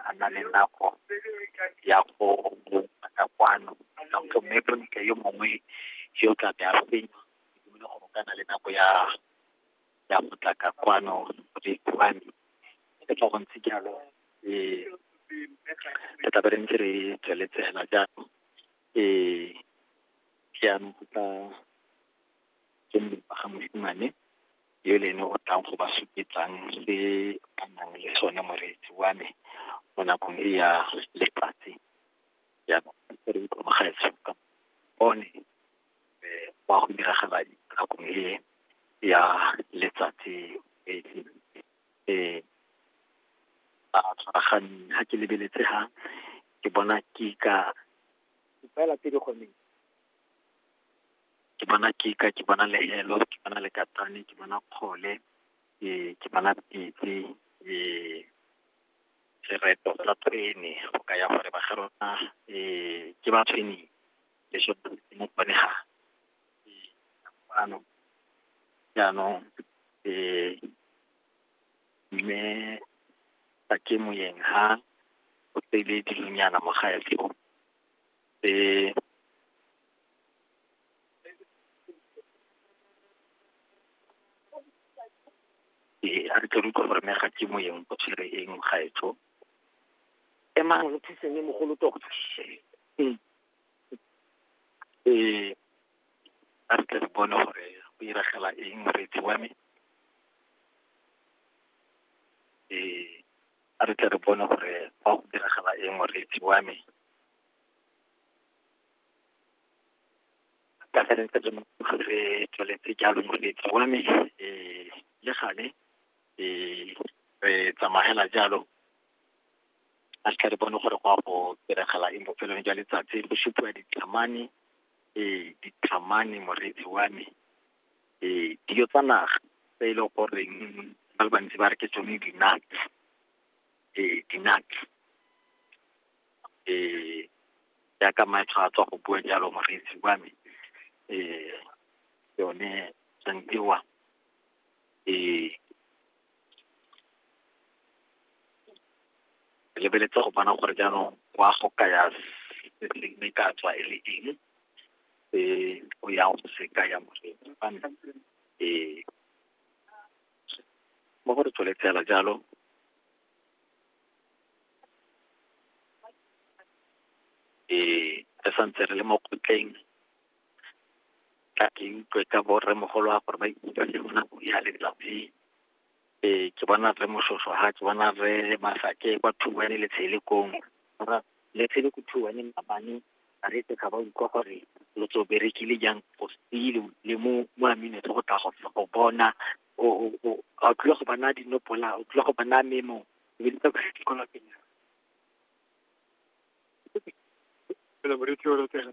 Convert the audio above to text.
a na le nako ya go mo batla kwano donc mme bontle yo mongwe yo tla be a fenya ke dumele gore o ka na le nako ya ya go tla ka kwano le kwano e tla go ntse jalo eh re tla be re ntse re tsweletse hela jalo eh jaanong go tla ke mpa ga mosimane yo le ene o tlang go ba supetsang se ba nang le sone moreetsi wa me mo nakong e ya letsatsi ya re itlhomagaetse ka bone wa go diragala nakong e ya letsatsi e e a tshwaraganeng ha ke lebeletse ha ke bona ke ka fela pele gone ke bona kika, ke bona lehelo, ke bona lekakaane, ke bona kgole, ke bona pitse, sereto sa tshwene, go kaya gore ba ga rona ke ba tshweneng, lesho mo bone ga jaanong, jaanong mme ga ke moeng ha o tsele dilonyana mo gaetsho. e ee a re tle re utlwa gore mme ga ke moyeng o tshwere eng gaetsho emang re thuseng le mogolo tota ee a re tle re bone gore go iragela eng moreetsi wa me ee a re tle re bone gore fa go diragala eng moreetsi wa me ka ge re ntse re re tsweletse jalo moreetsi wa me um le gale um re tsamagela jalo a re tle re bone gore go a go diragala eng bofelong jwa letsatsi go supiwa dithamane um dithamane moreetsi wa me eh dijo tsa naga tse e leng goreng ba le bantsi ba re ke tsone di-nuts eh di-nuts eh jaaka maetsho a tswa go bua jalo moreetsi wa me eh yone santiwa eh lebeletse go bona gore jaanong wa go kaya se se ne ka tswa e le eng se o yang go se kaya moreki fa nna ee mo gore tsole tsela jalo ee re santse re le mo kgotleng ka ke utlwe ka borre mogolo wa gore ba ikutlwa ke gona go ya letsatsi Ee, ke bona rre Moshoeshoe ha, ke bona rre Masake kwa two one le tshele koo. Mara le tshele ko two one maabane ba re tsa ba utlwa gore lo tso berekile jang go sile le mo mo amino go tla go go bona o o o a tlile go bona dinopola o tlile go bona memo le tsa go se kola pele. Ke le boretse o re tsena.